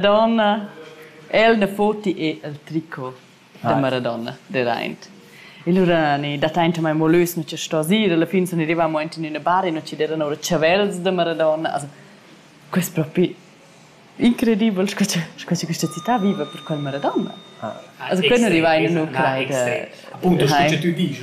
Madonna. El na foti e el tricot da Maradona deraint. E lura ni dataintamaing mo lös nu ci sto ir, alla fin sun rivamo aint in üna bar e nu ci deran oura chavels da Maradona. Also, quest propi incredibel sco cha sco cha questa città viva per quel Maradona. Also quei non riva in Ucraina. Appunto, sco che tu dici,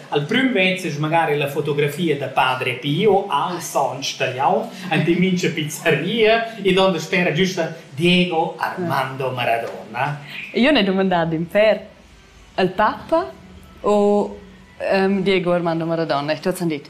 al prüm vezzes magari la fotografia da padre Pio al sontg talian, ante mincha pizzeria, e donde spera giusta Diego Armando Maradona. Io ne domandado in per al papa o um, Diego Armando Maradona? Ich hab's dit.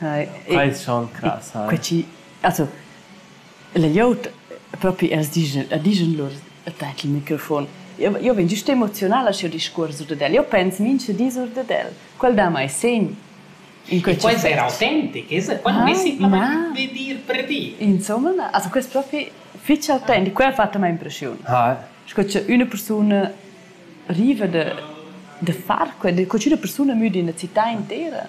Eis schon crass, ha. Quei chi, also, la glieud propi, els digen, digen lur tat il microfon. Io, io vegn gist emozionala sch'jeu discuors ur dad el. Io pens mintga dis ur dad el. Quel dà mai segn. In quei può essere autentic, es? Quel vei simplamain di dir per dir. Insomma, na. Also questo è proprio fitch autentico, quello ha fatto mai impressione. Ah. Sco che una persona arriva da, da far quello, che una persona muda in una città intera.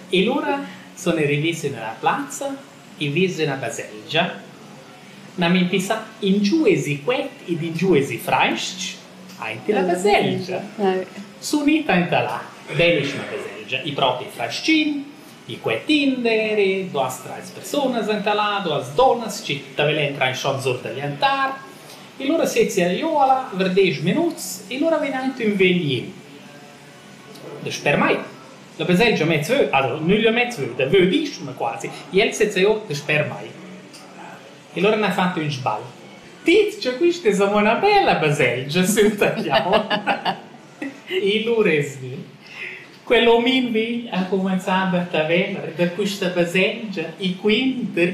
E lura sun i rivì sün üna plazza e vis üna baselgia. Gnanc impissà ingiù esi cuet ed ingiù esi frais-ch aint illa baselgia. Sun ita enta là, bellissima baselgia, i propi frais-chin, i cuet tinder e duas trais persunas enta là, duas dunnas chi ta velen trainschond sur da gl'altar. E lura sezia giò a là ver desch minuts e lura vegn aint ün vegl Dasper mei. La baselgia mez veu, allura nüglia mez veu, da veu disch ma quasi. El seza eau dasper mei. E lura n'ha fat ün sbagl. Tits cha quista es amo 'na bella baselgia, senta jau. E lura es gnü. Quel omin vegl ha cumanzà da Taverner da quista baselgia e quinter